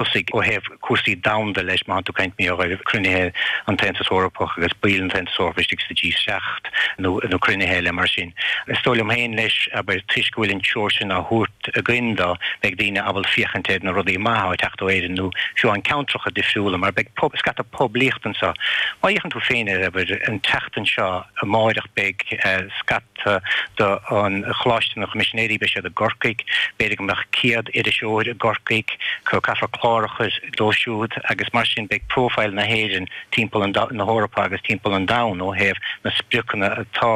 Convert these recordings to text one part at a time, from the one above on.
ó thaobh cúrsaí domhanda leis, má tá tú ag caint mí ar chruinnithe an tAontas Eorpach agus baill an tAontas Eorpach istigh sa G7 nó cruinnithe eile mar sin. Is dóigh liom féin leis, abair, toisc go bhfuil an treoir san á thabhairt againn do, beidh daoine ag dul ag féachaint ar na rudaí maithe atá ag teacht ó Éirinn nó fiú amháin ceantracha difriúla mar beidh scata poiblíocht anseo. Má fhéachann tú féin air, abair, an tseachtain seo amáireach beidh scata. Tá, don Choláiste na gCoimisinéirí, beidh siad i gCorcaigh, b'fhéidir go mbeadh céad iriseoir i gCorcaigh, so caithfear clár a chur dóibh siúd agus mar sin beidh profile na hÉireann timpeall na hEorpa agus timpeall an domhan ó thaobh na spriocanna atá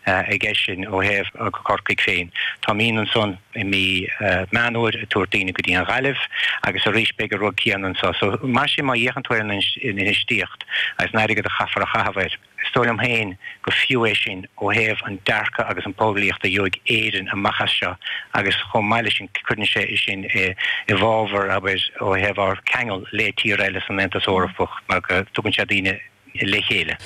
ag eisean ó thaobh Corcaigh féin. Táimid ansan i mí Meán Fómhair ag tabhairt daoine go dtí an Ghaillimh agus arís beidh an rud céanna anseo so mar sin má fhéachann tú ar an infheistíocht agus an airgead a chaithfear a chaitheamh air Is dóigh liom féin gur fiú é sin ó thaobh an dearcadh agus an poiblíocht a gheobhaidh Éirinn amach as seo agus chomh maith leis sin cuireann sé sin i bhfabhar, abair, ó thaobh ár ceangal le tíortha eile san Aontas Eorpach mar go dtugann sé daoine le chéile.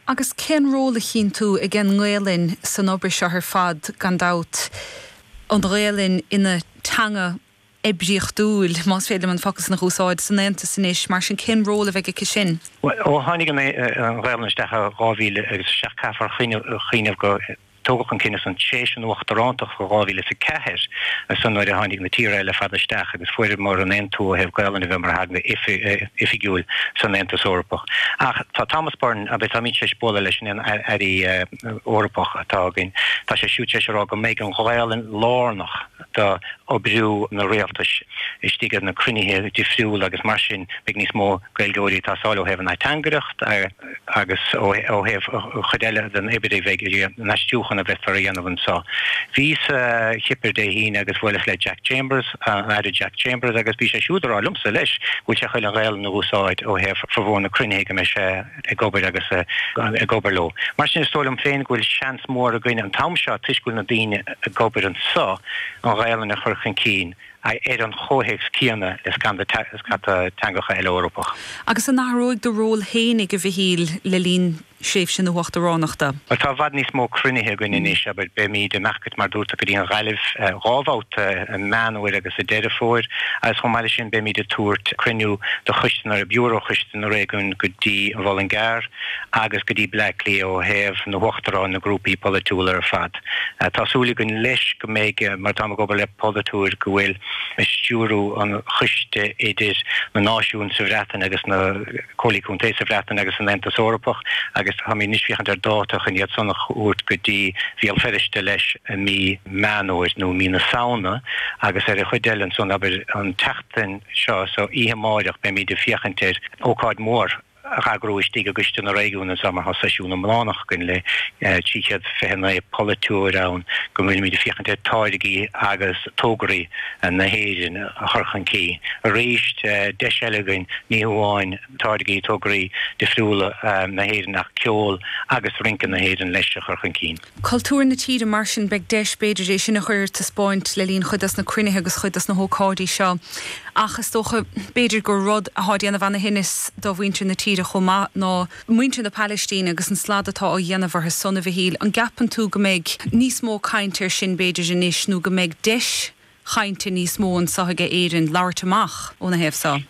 Agus cén ról a chíonn tú ag an nGaelainn san obair seo ar fad, gan dabht, an Ghaelainn ina teanga oibríochtúil, más féidir liom an focal san a úsáid, san Aontas anois. Mar sin, cén ról a bheidh aici sin? Bhuel, ó tháinig an Ghaelainn isteach i 2007 caithfear cuimhneamh go tógadh an cinneadh san tar éis an uachtarántacht i 2004, so nuair a tháinig na tíortha eile ar fad isteach agus fuaireamar an aontú ó thaobh Gaelainne a bheith mar theanga oifigiúil san Aontas Eorpach. Ach tá Thomas Byrne, abair, táimid tar éis bualadh leis an Aire Eorpach atá againn, tá sé siúd tar éis a rá go mbeidh an Ghaelainn lárnach, d'oibriú na rialtais istigh ag na cruinnithe difriúla agus mar sin beidh níos mó Gaeilgeoirí ag teastáil ó thaobh an ateangaireacht agus ó thaobh an chuid eile den obair, abair, an aistriúchán a bheifear á dhéanamh anseo. Bhíos sa Chipir Dé hAoine agus bhuaileas le Jack Chambers, an Aire Jack Chambers agus bhí sé siúd á rá liomsa leis go bhfuil sé chun an Ghaelainn a úsáid ó thaobh formhór na cruinnithe go mbeidh sé ag obair agus ag obair leo. Mar sin, is dóigh liom féin go bhfuil seans mór againn an t-am seo, toisc go bhfuil na daoine ag obair anseo, an Ghaelainn a chur chun cinn ar an chomhthéacs céanna le scata teangacha eile Eorpach. Agus an athróidh do ról féin, a Mhichíl, le linn thréimhse na huachtaránachta? Bhuel, tá i bhfad níos mó cruinnithe againn anois, abair. Beimid ag imeacht, mar a dúirt tú, go dtí an Ghaillimh dhá bhabhta, i Meán Fómhair agus i Deireadh Fómhair, agus chomh maith leis sin beimid ag tabhairt cruinniú do choiste na, biúró Choiste, na réigiúin go dtí an Muileann gCearr agus go dtí Bleá Cliath ó thaobh na huachtaráin na grúpaí polaitiúla ar fad. Tá súil againn leis go mbeidh mar táim ag obair le polaiteoir go bhfuil ag stiúradh an choiste idir na náisiúin sa Bhreatain agus na Comhairlí Contae sa Bhreatain agus san Aontas Eorpach agus táimid anois ag féachaint ar dáta chun iad san a thabhairt go dtí Béal Feirste leis i mí Meán Fómhair nó mí na Samhna agus ar an chuid eile ansan abair an tseachtain seo so oíche amáireach beimíd ag féachaint ar ócáid mhór a heagrú istigh i gCoiste na Réigiún so mar tá seisiún iomlánach againn le 329 polaiteoir ann go bhfuilimíd ag féachaint ar táirgí agus tograí na hÉireann a chur chun cinn arís. Deis eile againn ní hamháin táirgí, tograí difriúla na hÉireann ach ceol agus rince na hÉireann leis a chur chun cinn. cultúr na tíre mar sin beidh deis, b'fhéidir, é sin a chur ar taispeáint le linn chuid dos na cruinnithe agus chuid dos na hócáidí seo. Ach is dócha, b'fhéidir, gur rud atá ag déanamh ana-thinneas do mhuintir na tíre chomh maith ná muintir na Palaistíne agus an slad atá á dhéanamh orthu san, a Mhichíl. An gceapann tú go mbeidh níos mó caint air sin, b'fhéidir, anois nó go mbeidh deis chainte níos mó anseo aige Éirinn labhairt amach óna thaobh seo.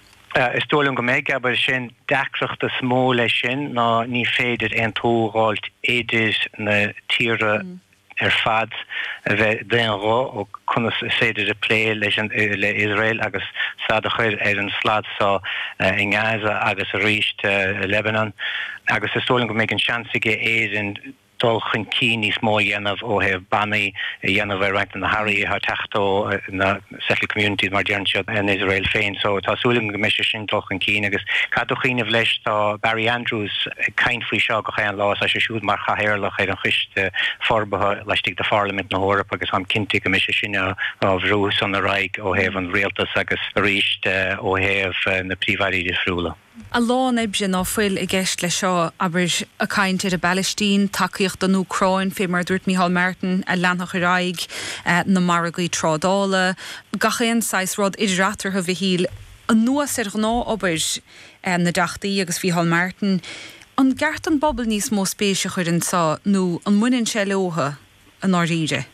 Is dóigh liom go mbeidh, abair, sin an deacracht is mó leis sin ná ní féidir aontú a fháilt idir na tíortha ar fad a bheith d'aon ghuth faoi conas is féidir plé leis le Iosrael agus stad a chur ar an slad seo i nGaza agus arís i Lebanon agus is dóigh liom go mbeidh an seans aige Éirinn dul chun cinn níos mó a dhéanamh ó thaobh bannaí a dhéanamh ar roinnt de na hearraí atá ag teacht ó na settled communities mar a deireann siad in Iosrael féin. So tá súil agam go mbeidh sé sin dul chun cinn agus caithfidh tú cuimhneamh leis tá Barry Andrews ag caint faoi seo gach aon lá, tá sé siúd mar chathaoirleach ar an choiste forbartha laistigh de Pharlaimint na hEorpa agus táim cinnte go mbeidh sé sin á bhrú san ar aghaidh ó thaobh an rialtas agus arís ó thaobh na príomh-airí difriúla. A lán oibre ná fuil i gceist leis seo, abair, caint ar an bPalaistín, tacaíocht don Úcráin, fé mar a dúirt Micheál Martin, a leanfadh ar aghaidh, na margaí trádála, gach aon saghas rud, idir eatarthu, Mhichíl, anuas ar ghnáth-obair na dTeachtaí agus Mhicheál Martin. An gceart don bpobal níos mó spéis a chur ann seo nó an mbaineann sé leotha i ndáiríre?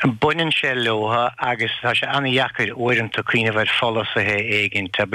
Baineann sé leotha agus tá sé an-dheacair uaireanta cuimhneamh ar pholasaithe éigin, abair,